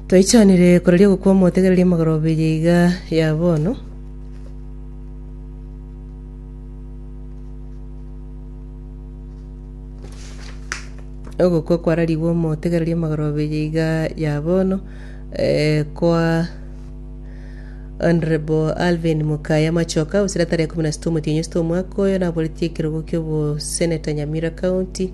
Toichanire koraria ogokwa omotegereri amagoro abiri iga ya bono. Ogokwa kwararigwe omotegereri amagoro abiri iga ya bono eh, kwa Honorable Alvin Mukaya Machoka gose tarehe kumi na sita omotienyi sita omwaka oyo naboretie ekerogo kia oboseneta Nyamira County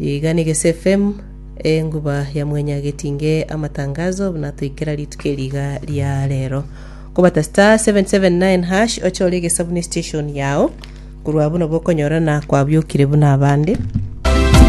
Igani geseFm, Enguba ya Mwenya Getinge Amatangazo buna toikera rituko eri iga ria rero. Kobata star 779 hash oche ore egesa buna estation yao korwa abwo nabo okonyorana kwabiokire buna abande.